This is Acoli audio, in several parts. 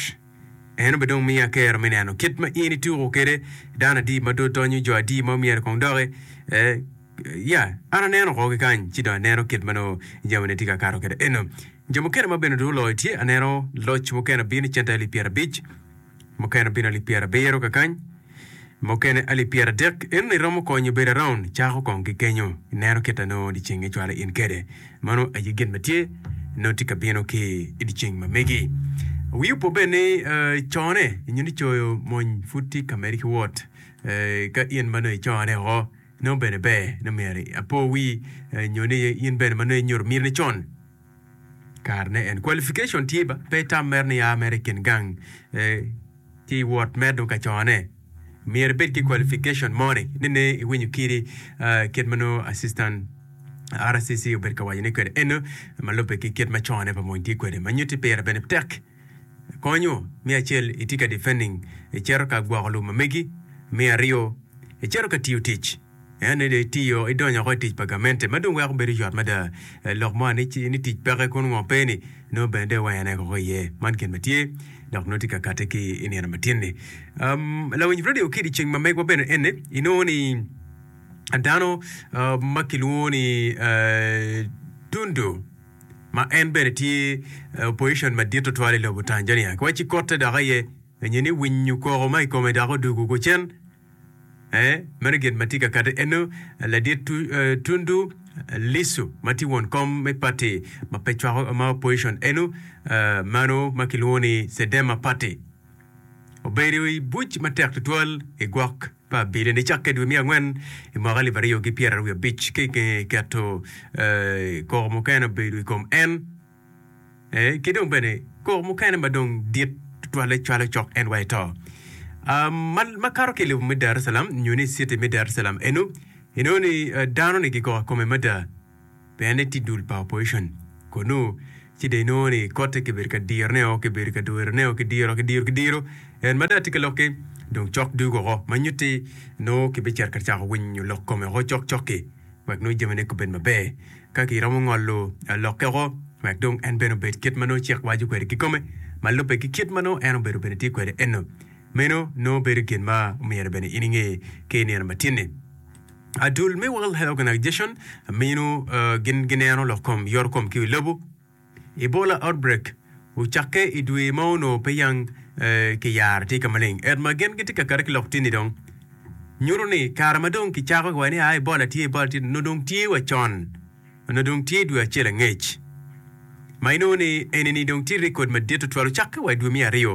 Rwot. En obed dong miya kero me neno kit ma in ituko kede dano adi ma dot donyo, jo adi ma omyero kong doki. Eh, ya, an aneno oko ki kany, ci dong aneno kit ma nongo jamine tye ka kato kede eno. Jo mukene ma bene dong oloyo tye, aneno loc mukene bino cente alip pyerabic, mukene bino alip pyerabiro kakany. Mukene alip pyeradek eno ni romo konyo bedo around cako kong ki kenyo ineno kit a nongo dyeceng icwalo in kede mano aye gin ma tye nongo tye ka bino ki idyeceng ma megi. Wi opo bene ni cone nyo ni coyo mony pud tye ka medi ki wot ka in ma nongo icone oko nongo bene ber nongo myero apo wi nyo ni in bene ma nongo inyuto miri ne con Kare ne en qualification tye ba pe itam mere ni aa mere ikin gang ki iwot medo ka cone. Myero ibed ki qualification mo ni ni ne iwinyo kiri kit ma nongo assistant RCC obed ka waco ni kwede eno ma lubbe ki kit ma cone pa mony tye kwede ma nyuti pire bene tek konyo mi acel itye ka defending icero ka gwoko lum ma megi mi aryo icero ka tiyo tic En aye dong itiyo, idonyo woko i tic pa gamente ma dong weko bedo yot mada. Lok mo ni tic peke kun ngo pe ni, nongo bene dong iwayane woko iye. Man gin ma tye, dok nongo tye ka kati ki i nino matin-ni. Lawiny redio ki i ceng ma megwa bene ene, inongo ni dano ma kilwongo ni Tundu ma en bene tye opposition madit tutwal i lobo Tanzania ki wa ci kotte dok aye nyo ni winyo koko ma i kome dok odugu kucen. Ee, meno gin ma tye ka kati eno. Ladit Tundu Lissu ma tye won kom me pati ma pe cwako ma opposition eno, meno ma kilwongo ni Cedema Party, obedo i buc matek tutwal i gwok pa Abilen i cakke dwe me angwen i mwaka alip aryo ki pyeraryo abic. Ki i nge keto koko mukene obedo i kom en, Ee, ki dong bene koko mukene ma dong dit tutwalle cwalo cok en wa i to. Ah, ma, ma kato ki i lobo me Daresalam, nyo ni i citi me Daresalam eno, inongo ni ah, dano-ni gigoko kome mada, pien ni tye dul pa opposition. Konu, ci dong inongo ni kotte kibedo ka dirone-o, kibedo ka dwerone-o, kidiro, kidiro, kidiro, en mada tye ka lokke, dong cok dugo oko, ma nyutti nongo kibicito ka cako winyo lok kome oko cok cok-ki, wek nongo jamine gubed maber. Ka giromo ngolo lokke woko, wek dong en bene obed kit ma nongo cik waco kwede kikome, ma lubbe ki kit ma nongo en obedo bene tye kwede eno, meno nongo bedo gin ma myero bene in inge ki i nino matinni. Adul me World Health Organization mino gin gineno lok kom yorokom ki wi lobo. Ebola outbreak ocakke i dwe ma onongo pe yang ki yaro tye ka maleng et ma gin gitye ka kati ki lok tini dong nyuto ni kare ma dong ki cako ki wa ni a Ebola tye Ebola tye nongo dong tye wa con nongo dong tye dwe acel angec ma inongo ni enini dong tye record madit tutwal ocakke wa i dwe me aryo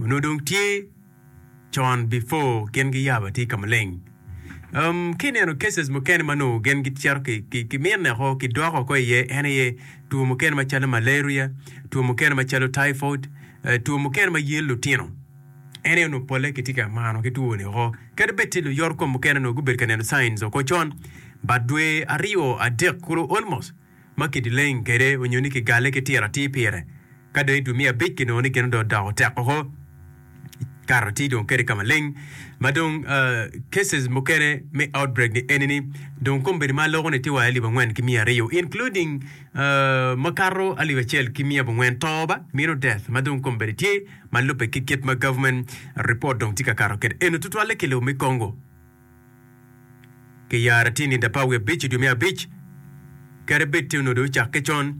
Onongo dong tye con before gin giyabo atir ka maleng. Um, ki neno cases mukene ma nongo gin gicito ki, ki, ki mine oko, ki dwoko oko iye, en aye two mukene macalo malaria, two mukene macalo typhoid, eh, two mukene ma yel lutino. En aye onongo polle kitye ka mano ki two ni oko. Kadi bed tye luyot kom mukene nongo gubedo ka neno signs oko con, but dwe aryo, adek kulu almost, ma kidileng kwede onyo ni kigale ki tira atir pire, ka dong i dwe me abic kinongo ni gin odong odoko tek woko, kato atir dong kede ka maleng. Ma dong cases mukene me outbreak ni eni ni dong kom bedo ma loko ni tye wa alip angwen ki miya aryo including ma kato alip acel ki miya abongwen to ba mino death ma dong kom bedo tye ma lube ki kit ma government report dong tye ka kato kede eno tutwalle ki lobo me Congo. ki yara tye nida pa wiye abic i dwe me abic, kadi bed tye onongo dong ocak ki con,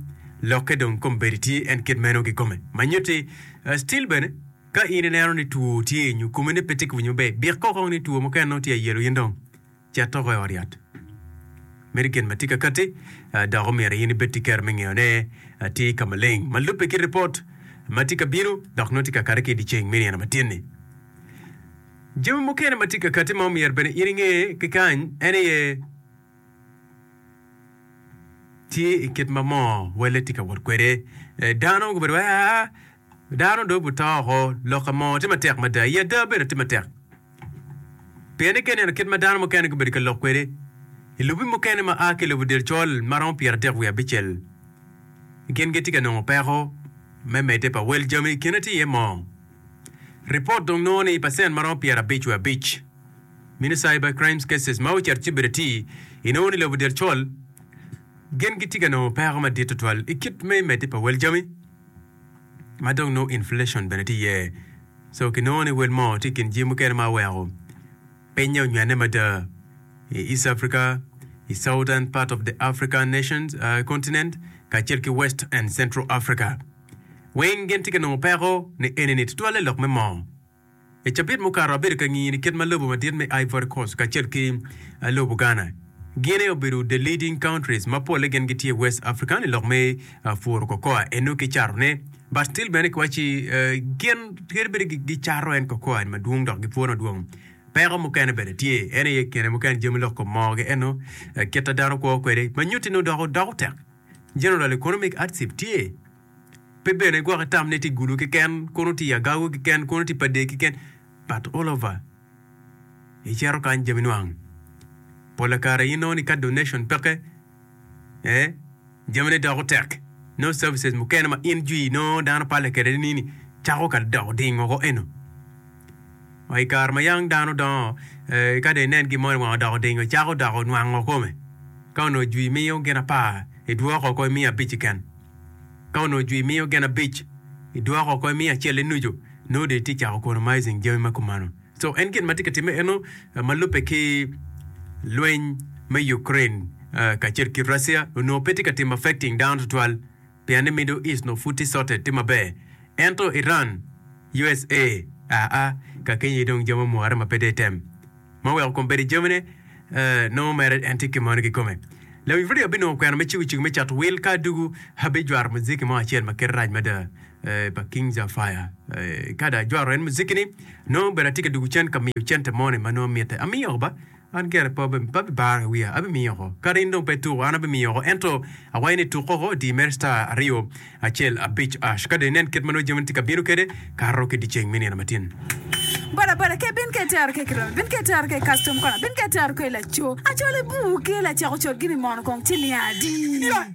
lokke dong kom bedi tye en kit meno kikome. Ma nyutti, still bene, ka in ineno ni two tye i nyo kome ni pe tye ka winyo maber, dik koko ni two mukene nongo tye ayelo in dong cet oko i ot yat. Meno gin ma tye kakatti, dok omyero in ibed ki kero me ngeyo ne atir ka maleng ma lubbe ki ripot ma tye kabino dok nongo tye kakati ki i dye ceng me nino matinni. Jami mukene ma tye ka katti ma omyero bene in inge ki kany en aye, Tye i kit ma moo welle tye ka wot kwede. Dano gubedo wai aa, dano dong guto woko, lokke moo tye matek mada, i ada bene tye matek. Pienni ka ineno kit ma dano mukene gubedo ka lok kwede i lobi mukene ma aa ki i lobo del col ma romo pyeradek wiye abicel, gin gitye ka nongo peko me medde pa wel jami i kine tye iye moo. Ripot dong nongo ni i pacent ma romo pyera abic wiye abic me ni cyber crimes cases ma ocito cibere ti i nongo ni lobo del col gin gitye ka nongo peko madit tutwal i kit me medde pa wel jami ma dong nongo inflation bene tye iye so ki nongo ni wel moo tye i kin jing mukene ma oweko pinye onywene mada i East Africa, i Southern part of the African nations, uh, continent, kacel ki West and Central Africa. Weng gin tye ka nongo peko ni enini tutwalle lok me moo. I cabit mukato abedo ka ngiyo ni kit ma lobo madit me Ivory Coast kacel ki lobo Ghana, Guinea obedo the leading countries ma polle gin gitye i West African i lok me pworo cocoa eno ki cato ne. But still bene kiwaci gin kadi bed gi gi cato en cocoa en madwong dok gipwone madwong, peko mukene bene tye en aye kine mukene jami lok kom moo gi eno kit a dano kwo kwede ma nyuti nongo dok otek. General Economic Atsip tye, pe bene gwoki tam ne tye Gulu keken, kono tye Agagu keken, kono tye Padee keken, but all over icito kany jami nwang. Pola kare inongo ni ka donation peke, eh, jami ne doko tek, nongo services mukene ma in jwi inongo dano palle kede ni ni cako ka doko ding woko eno. I kare ma yam dano dongo, ka dong inen gin mo ni wang odoko odingo, icako doko nwango kome. Ka onongo jwi miyo gin apar, idwoko oko imiyo abic keken. Ka onongo jwi miyo gin abic, idwoko oko imiyo acel-le nucu, nongo dong itye ka cako economizing jami ma kumeno. So en gin ma tye ka timme eno ma lubbe ki lweny me Ukraine kacel ki Russia onongo pe tye ka timo affecting dano tutwal. pien ni Middle East nongo pud tye sorted, tye maber. Ento Iran, usa, aa, kakeny aye dong jami omwore ma pe dong item ma weko kom bed i jamine, eh, nongo mere en tye ki moni kikome. Lawiny redio abinongo kwena me cego cik me cato wil ka adugu, abijwato muziki mo acel ma kite rac mada, eh, pa King Jah Fire. Eh, ka dong ajwato en muziki-ni, nongo bedo atye ka dugu cen ka miyo cente moni ma nongo mitte. Amiyo ba, An gire pe abibaro wiya, abimiyo oko. Kadi in dong pe ituko, an abimiyo oko. Ento akwayo ni tuk koko odi mere cita aryo, acel abic ash, ka dong inen kit ma nongo jamini tye ka bino kwede kato ki dyeceng me nino matin. Bodaboda ke bino ka itero ke kirobi, bino ka itero ke custom kona, bino ka itero ke laco. Acwalo buu ke lacako cot gini mono kong ci niang adi?